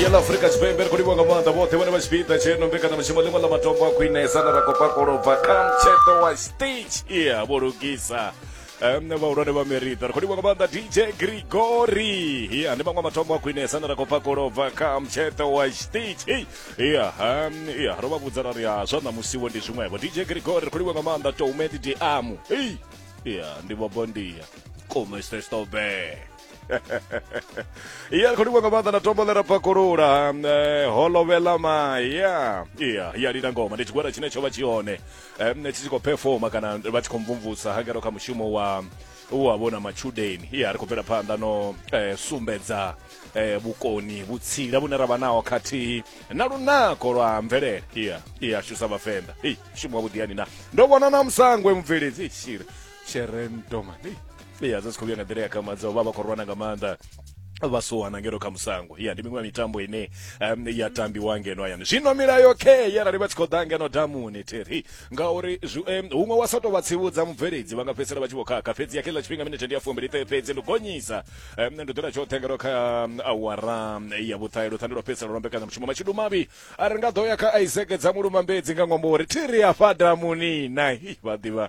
yela afurika tshipembe ri khou livhwa nga maanḓa vhoṱhe vhone vha tshipiḓa tsheno mbekanyamushumo ḽiṅwe ḽa matombo a khwinesa na ra khou pakolobva kha mtsheṱo wa stage iya vho lugisa nṋe vhahulwane vha merita ri khou livhwa nga maanḓa dj grigori iya ndi maṅwe matombo a khwinesa na ra khou pakolobva kha mtsheṱo wa stage ei iya iya ro vha vhudza ra ri a zwa ṋamusiwo ndi zwiṅwevho dj grigori ri khou livhwa nga maanḓa toumedi diamu ei iya ndi vhobondia komestestobee iya khou livha nga maanḓa na tombo ḽe ra pakulula um, eh, holovhela maya iya iya lina ngoma ndi tshigwada tshine tsho vha tshi hone um, tshi tshi khou performa kana vha tshi khou mvumvusa hangero kha mushumo wa wa vhona matshudeni iya ri khou bvela phanḓa no eh, sumbedza eh, vhukoni vhutsila vhune ra vha naho khathihi na lunako lwa mvelele iya iya shusa vhavenḓa ei shumo wa vhuḓiyani na ndo vhona na musangwe mubveledzi ishiri tshirendoma ya zwi si khou vhuya nga nḓila ya kamadza vha vha khou rwana nga maanḓa vha suwana ngeno kha musango ya ndi miṅwe ya mitambo ine um, ya tambiwa ngeno hayani zwino milayo khe yarali vha tshi khou ḓa ngeno damuni theri ngauri um, huṅwe wa sa tou vha tsivhudza mubveledzi vha nga fhedzisela vha tshi vho khakha fhedzi ya kheḽa tshifhinga minete ndi ya fumbili ṱe fhedzi ndi gonyisa um, ndi ḓola tshoṱhe ngeno kha awara ya vhuṱahe luṱhande lwa fhedzisela lwa mbekanyamushumo mashidu mavhi a ri nga ḓo ya kha isaac dza mulumambedzi nga ṅwambo uri thiri ya fa damuni na vha ḓivha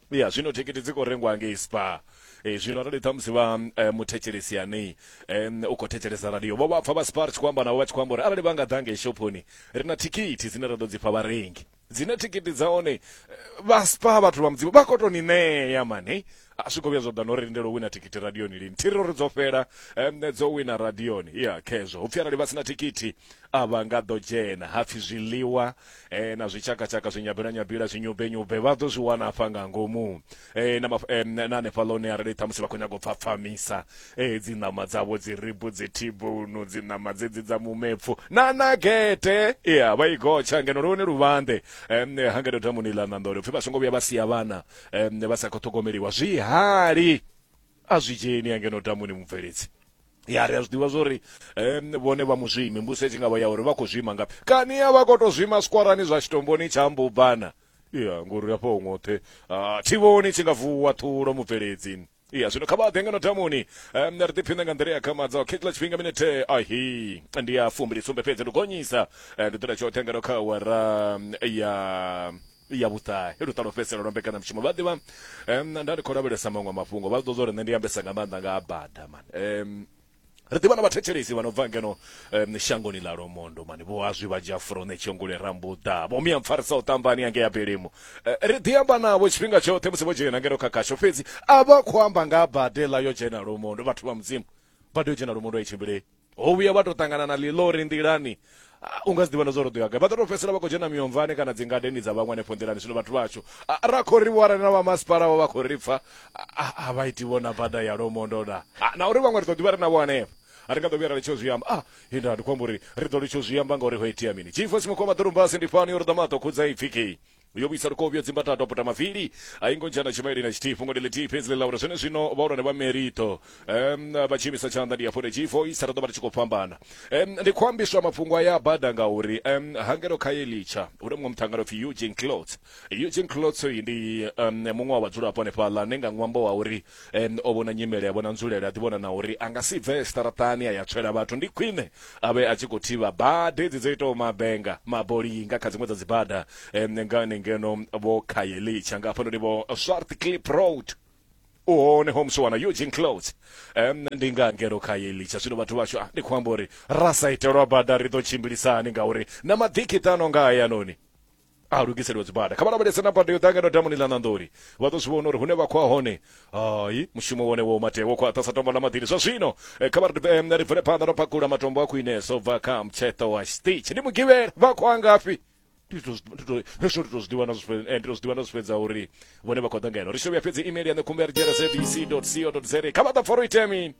ya zwino thikhithi dzi khou rengwa ngei spar e, zwino arali ṱhamusi vha e, muthetshelesi anei e, u khou thetshelesa radio vho vha pfa vha spar tshi khou amba navho vha tshi khou amba uri arali vha nga ḓa ngei shophoni ri na thikhithi dzine ra ḓo dzi fha vharengi dzine thikhithi dza hone vha spar vhathu vha mudzimu vha khou tou ni ṋea mane a zwi khou vhuya zwa ḓa no ri lindela u wina thikhithi radioni lini thiri uri dzo fhela um, dzo wina radioni ya khezwo hupfi arali vha sina thikhithi a vha nga ḓo dzhena hapfi zwiḽiwa eh, na zwitshakatshaka zwinyabela nyabela zwinyube nyube vha ḓo zwi wana afha nga ngomu eh, na, maf- eh, na hanefha ḽone arali ṱhamusi vha khou nyanga u pfa pfamisa eh, dzi ṋama dzavho dzi ribu dzi thibunu dzi ṋama dzedzi dza mumepfu na na gete ya vha i gotsha ngeno lone luvhanḓe em, ha ngeno damuni ḽa ṋanḓole upfi vha songo vhuya vha sia vhana em, vha sa khou ṱhogomeliwa zwihali A zwi dzheni ya ngeno damuni mubveledzi. Ya ri a zwi ḓivha zwori um, vhone vha muzwimi mbuso itshi ngavha ya uri vha khou zwima ngafhi. Kani ya vha khou tou zwima skorani zwa tshitomboni tsha mbubana. Ya ngori hafha ho ngoṱhe uh, thivhoni tshi nga vuwa ṱhulo mubveledzi. Ya zwino kha vha ḓe ngeno damuni um, ri ḓiphine nga nḓila ya khamadza o khethela tshifhinga minete ahi ndi ya fumbili sumbe fhedzi ndi gonyisa eh, ndi ḓula tshoṱhe ngeno kha awara ya ya vhuṱahe luṱa lwo fhedzisela lwa mbekanyamushumo vha ḓivha um, nda ndi khou lavhelesa maṅwe mafhungo vha ḓo zwo ri nṋe ndi ambesa nga maanḓa nga bada man um, ri ḓivha na vhathetshelesi vha no bva ngeno um, shangoni ḽa lomondo mani vho azwi vha dzhia furone tshongole rambuḓa vho miya mpfarisa u ṱambani yange ya belemu uh, ri ḓi amba navho tshifhinga tshoṱhe musi vho dzhena ngeno kha khasho fhedzi a vha khou amba nga bade ḽa yo dzhena lomondo vhathu vha mudzimu bade yo dzhena lomondo a i tshimbilei ho vhuya vha to ṱangana na ḽiḽori nḓilani ah, u nga si ḓivha na zwo ro ḓo ya gai vha ḓo to fhedzisela vha khou dzhena miomvane kana dzingadeni dza vhaṅwe hanefho nḓilani zwino vhathu vhashu ah, ra khou ri vho arali na vhamasipala vho vha khou ri pfa ah, a vha iti vho na bada ya lomondo na Ah, na uri vhaṅwe ri ḓo ḓivha ri navho hanefho a ri nga ḓo vhuya ra litsho zwi amba ah inda ndi khou amba uri ri ḓo litsho zwi amba ngauri ho itea mini jifo simukhoma ḓorumbasi ndi fani uri ḓamaṱo khudza ipfi kei yo vhuisa lukovhi yo dzimba tato a puta mavili a i ngo dzhia na tshimaili na tshithihi fhungo ndi ḽithihi fhedzi ḽi ḽa uri zwene zwino vhahulwane vha merito um vha tshi imisa tshanḓa ndi afhone tshi voisa ri ḓo vha ri tshi khou fhambana um ndi khou ambiswa mafhungo aya a bada ngauri um hangelo kha ye litsha hu na muṅwe muṱhangano pfhi eugene clots eugene clots uyu ndi um muṅwe wa vhadzulapo hanefhaḽa ne nga ṅwambo wa uri um o vhona nyimele a vhona nzulele a ḓivhona na uri a nga si bve siṱaraṱani a ya tswela vhathu ndi khwine a vhe a tshi khou thivha bada edzi dzo itaho mabenga maboli nga kha dziṅwe dza dzibada um ngani ngeno vho khayelitsha nga hafhanoni vho swart clip road u hone home swana eugene close um ndi nga ngeno kha yelitsha zwino vhathu vhashu ah, ndi khou amba uri ra sa itelwa bada ri ḓo tshimbilisani ngauri na maḓikiṱano nga hayanoni a lugiseliwa dzibada kha vha lavhelese na bada yo ḓa ngeno damuni ḽa ṋanḓoni vha ḓo zwi vhona uri hune vha khou a hone hai mushumo wone wo mate wo khwaṱha sa tombo ḽa maḓini zwa zwino eh, kha vha ri em, ri bvele phanḓa ro pakula matombo a khwinesa u bva kha mtsheṱo wa stitch ndi mugivhela vha khou a ngafhi ndi to- ndi to- hezwo ndi to zwiḓivha na zwi fhe- eh, ndi to zwiḓivha na zwi fhedza uri vhone vha khou ḓa ngeno ri shovhuya fhedzi email ya nṋe khumbela dzhena zbc co za kha vha ḓa foro itemi